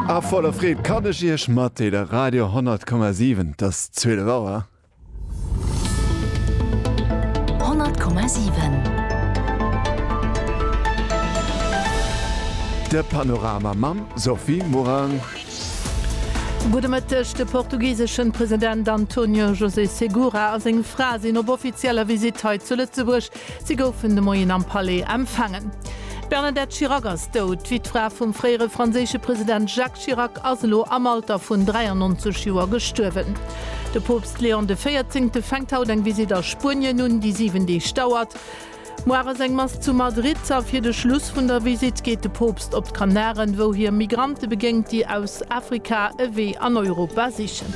A voller Freed kann ech Iech matdeele Radio 10,7, et ass 12 Auer. 10,7 De Panorama mam Sophie Morang. Gudde Mëtteg, De portugiseschen President Antonio José Segura a seng Fra sinn op offizieller Visitt hei zu Lëtzebuerg. Si goufen de Moien am Palais empfaangen. D'Bernadette Chirac ass dout. D'Wittfra vum fréiere franséische President Jacques Chirac ass elo am Alter vun 93 Joer gestuerwen. De Poopst Leon de Véierzéngte fänkt haut eng Visitt a Spuenien un, déi 7 Deeg dauert. Muar ass eng Mass zu Madrid a fir de Schluss vun der Visitt geet de Poopst op d'Kanaren, wou hie Migrante begéngt, déi aus Afrika e Wee an Europa sichen.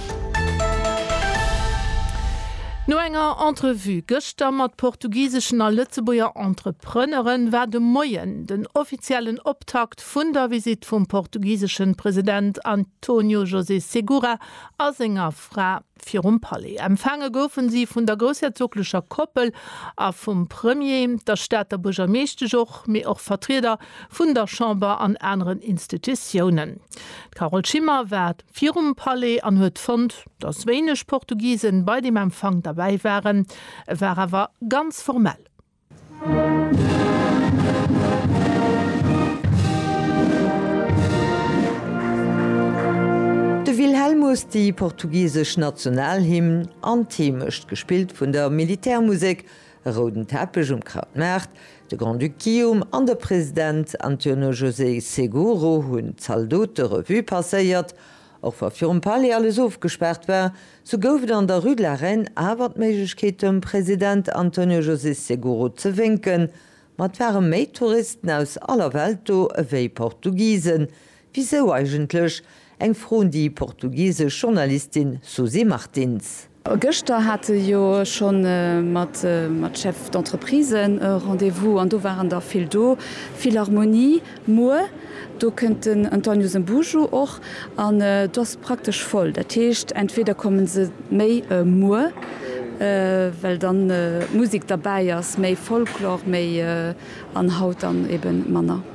No enger Entrevue gëschter. Gëschter mat portugiseschen a Lëtzebuerger Entrepreneure war de Moien den offiziellen Optakt vun der Visitt vum portugiseschen President António José Segura a senger Fra virum Palais. Empfaange goufen si vun der groussherzoglecher Koppel a vum Premier, der Stater Buergermeeschtesch och, mee och Vertrieder vun der Chamber an aneren Institutiounen. D'Carole Schimmer war. virum Palais an huet fonnt, dass wéineg Portugisen bei dem Empfang derbäi waren, e war awer ganz formell. De Wilhelmus, déi portugisesch Nationalhymn an d'Heemecht, gespillt vun der Militärmusek, E rouden Teppech um Krautmaart, de Grand-Duc Guillaume an de President António José Seguro hunn d'Zaldote Revue passéiert. Och wa virum Palais alles ofgespaart war, sou gouf et an der Rue de la Reine awer d'Méiglechkeet dem President António José Seguro ze wénken. Ma et ware méi Touristen aus aller Welt do ewéi Portugisen, Wisou eigentlech? Eng Fro un déi portugisesch Journalistin Susy Martins. Gëschter hat e jo schonn mat Chef d'entreprisen e Rendez-vous an do waren der vill do. Philharmonie muer, do kënnt den António Zambujo och an do ass et praktesch voll. Dat heescht entweder komme se méi muer, well dann d'Musek derbäi ass, méi Folklore, méi, an haut dann eben manner.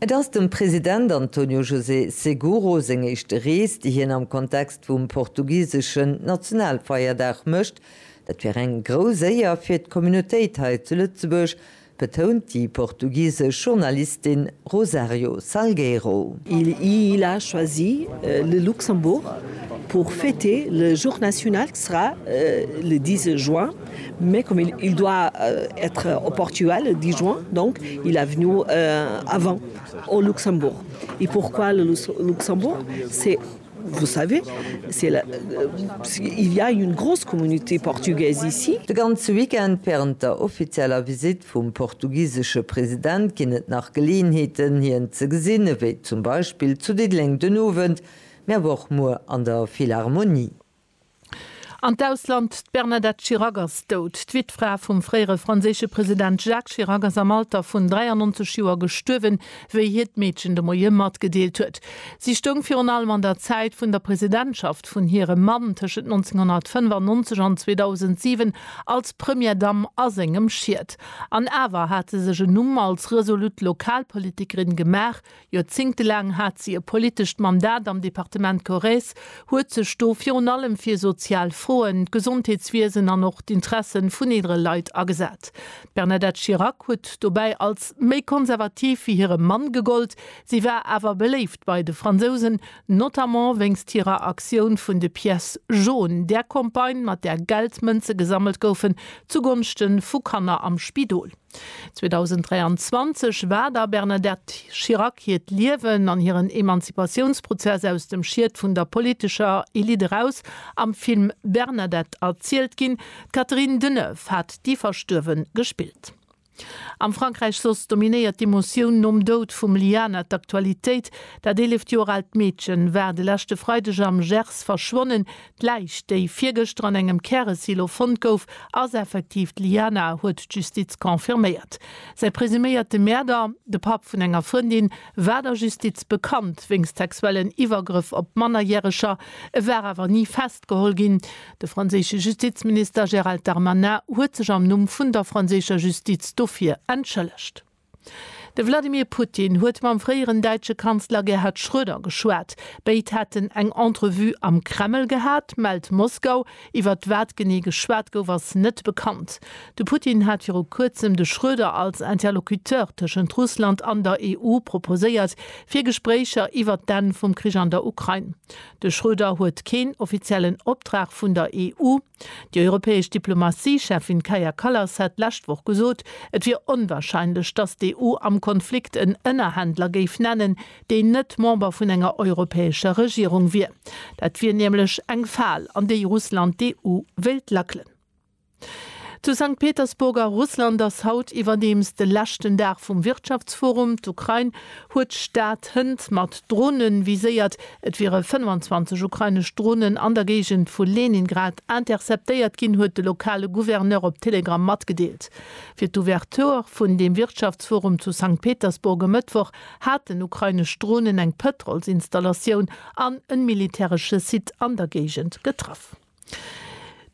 Et ass dem President António José Seguro seng éischte Rees, déi hien am Kontext vum portugiseschen Nationalfeierdag mécht. Dat wier eng grouss Éier fir d'Communautéit hei zu Lëtzebuerg, betount déi portugisesch Journalistin Rosario Salgueiro. Il a choisi le Luxembourg pour fêter le jour national qui sera le 10 juin. mais comme il il doit être au Portugal le 10 juin donc il est venu avant au Luxembourg et pourquoi le Luxembourg c'est vous savez c'est la il ya une grosse communauté portugaise ici. De ganze Weekend wärend der offizieller Visitt vum portugisesche President ginn et nach Geleeënheeten hien ze gesinn, ewéi zum Beispill zu Diddeleng den Owend, mee awer och muer an der Philharmonie. An d'Ausland, D'Bernadette Chirac ass dout. D'Wittfra vum fréiere franséische President Jacques Chirac ass am Alter vun 93 Joer gestuerwen, wéi hiert Meedchen de Moie matgedeelt huet. Si stoung virun allem an der Zäit vun der Presidentschaft vun hirem Mann tëschent 1995 an 2007 als Première Dame a sengem Schiet. An awer hat se sech en Numm als resolut Lokalpolitikerin gemaach, Joerzéngtelaang hat si e politescht Mandat am Departement Corrèze, huet sech do virun allem fir sozial Froen, d'Gesondheetswiesen an och d'Interesse vun eelere Leit agesat. D'Bernadette Chirac huet dobäi als méi konservativ wéi hire Mann gegollt. Si war awer beléift bei de Fransousen, notamment wéinst hirer Aktioun vun de Pièces jaunes, där Campagne, mat där Geldmënze gesammelt goufen zugonschte vu Kanner am Spidol. 2023 war der Bernadette Chirac hiert Liewen an hiren Emanzipatiounsprozess aus dem Schiet vun der politescher Elite eraus am Film Bernadette erzielt ginn. D'Catherine Deneuve hat déi Verstuerwe gespillt. Am Frankräich soss dominéiert d'Emotioun nom Doud vum Liana d'Aktualitéit. Dat 11 Joer aalt Meedchen war de leschte Freideg am Gers verschwonnen. D'Läich, déi virgëschter an engem Käresilo fonnt gouf, ass effektiv d'Liana, huet d'Justiz confirméiert. Säi presuméierte Mäerder, de Papp vun enger Frëndin, war der Justiz bekannt wéinst sexuellen Iwwergrëff op Mannerjäreger. E war awer ni festgeholl ginn. De franséische Justizminister Gérald Darmanin huet sech am Numm vun der franséischer Justiz dofir entschëllegt. De Wladimir Putin huet mam fréieren däitsche Kanzler Gerhard Schröder geschwat. Béid hätten eng Entrevue am Kreml gehat, mellt Moskau. Iwwert wat genee geschwat gouf, ass net bekannt. De Putin hat viru Kuerzem de Schröder als Interlocuteur tëschent Russland an der EU proposéiert, fir Gespréicher iwwert d'Enn vum Krich an der Ukrain. De Schröder huet keen offiziellen Optrag vun der EU. Déi europäesch Diplomatie-Cheffin Kaja Kallas hat d'lescht Woch gesot, et wier onwarscheinlech, datt d'EU am Konflikt en Ënnerhändler géif nennen, deen net Member vun enger europäescher Regierung wier. Dat wier nämlech eng Fal, an déi Russland d'EU wéilt lackelen. Zu Sankt Petersburg a Russland ass haut iwwerdeems de leschten Dag vum Wirtschaftsforum. D'Ukrain huet d'Stad Hënt mat Drone viséiert. Et wiere 25 ukrainesch Dronen an der Géigend vu Leningrad interceptéiert ginn, huet de lokale Gouverneur op Telegram matgedeelt. Fir d'Ouverture vun deem Wirtschaftsforum zu Sankt Petersburg e Mëttwoch haten ukrainesch Dronen eng Pëtrolsinstallatioun an en militäresche Site an der Géigend getraff.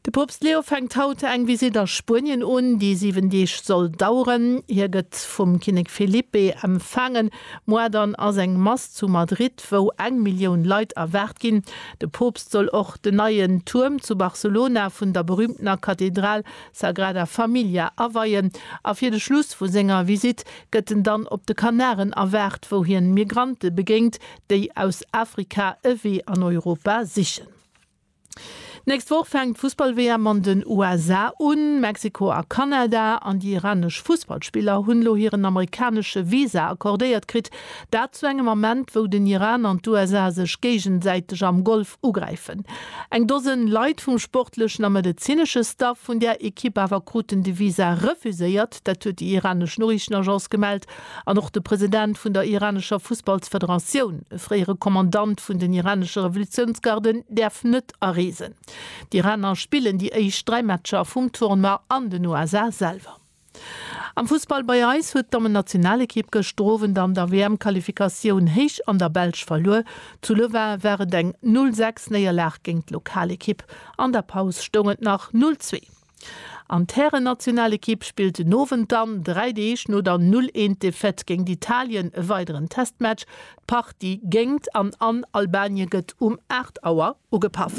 De Poopst Leo fänkt haut eng Visitt a Spuenien un, déi 7 Deeg soll daueren. Hie gëtt vum Kinnek Felipe empfaangen. Moar dann ass eng Mass zu Madrid, wou eng Millioun Leit erwaart ginn. De Poopst soll och den neien Tuerm zu Barcelona vun der berüümtener Kathedral Sagrada Familia aweien. A fir de Schluss vu senger Visitt gëtt en dann op de Kanaren erwaart, wou hien Migrante begéint, déi aus Afrika e Wee an Europa sichen. D'nächst Woch fänkt d'Fussball-WM an den USA un. Mexiko a Kanada an déi iranesch Fussballspiller hunn elo hiren amerikanesche Visa accordéiert kritt. Dat zu engem Ament, wou den Iran an d'USA sech géigesäiteg am Golf ugräifen. Eng Dosen Leit vum sportlechen a medezinesche Staff vun där Ekipp awer kruten de Visa refuséiert. Dat huet déi iranesch Noriichtenagence gemellt. An och de President vun der iranescher Fussballsfederatioun, e fréiere Kommandant vun den iranesche Revolutiounsgarden, däerf net areesen. D'Iraner spillen déi éischt dräi Matcher vum Tournoi an den USA selwer. Am Fussball bei eis huet d'Dammennationalekipp gëschter Owend an der WM-Qualifikatioun héich an der Belsch verluer. Zu Louvain war et eng Null sechs Néierlag géint d'Lokalekipp. An der Paus stoung et nach Null zwee. An d'Härennationalekipp spillt den Owend dann, dräi Deeg no der Null-Eent-Defaite géingt Italien, e weideren Testmatch. D'Partie géingt an an Albanien gëtt um 8 Auer ugepaff.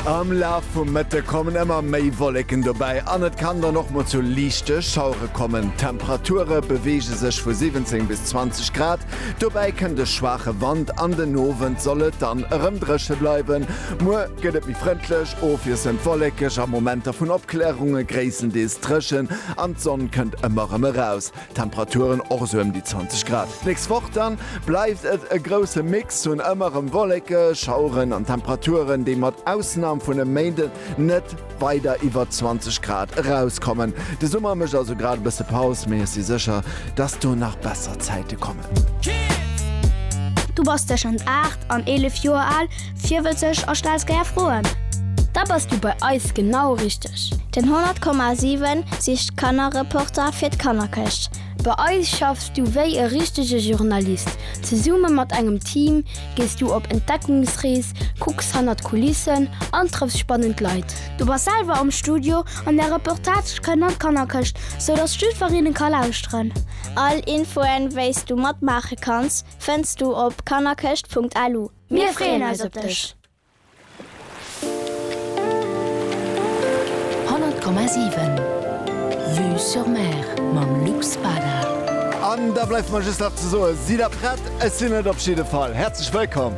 Am Laf vum Mëtte kommen ëmmer méi Wolleken dobäi an et kann dann och mol zu liichte Schauere kommen. D'Temperature beweege sech vu 17 bis 20 Grad, Dobäi kënnt e schwaache Wand an den Owend soll et dann erëm dréche bleiwen. Muer gëtt et méi frëndlech, ofwiesselnd wollekeg a Momenter vun Opklärung. E gréisstendeels dréchen an d'Sonn kënnt ëmmer erëm eraus. Temperaturen och esou ëm déi 20 Grad. D'nächst Woch dann bleift et e grousse Mix vun ëmmer erëm wollekeg, Schaueren an Temperaturen, déi mat Ausnam vun e Méinden net. weider iwwer 20 Grad erauskommen. De Summer mécht also grad e bësse Paus, mee ech si sécher, dass do nach besser Zäite kommen. Du bass tëschent 8 an 11 Joer al, virwëtzeg a stells gär Froen? Da bass du bei eis genau richteg! Den 100,7 sicht Kannerreporter fir d'Kannerkëscht. Bei eis schaffs du wéi e richtege Journalist, zesumme mat engem Team, Gees du op Entdeckungsrees, kucks hannert d'Kulissen an trëffs spannend Leit. Du bass selwer am Studio an där Reportage kënnt an d'Kannerkëscht, sou dass d'Stüferinnen ka lauschteren. All Infoen, wéis du matmaache kanns, fënns du op kannerkëscht.lu. Mir freeën eis op dech! Honnert Komma siwen, Vue sur Mer mam Luc Spada. An da bleift mer just nach ze soen, Sidd der prett? Ech sinn et op jidde Fall. Häerzlech wëllkomm!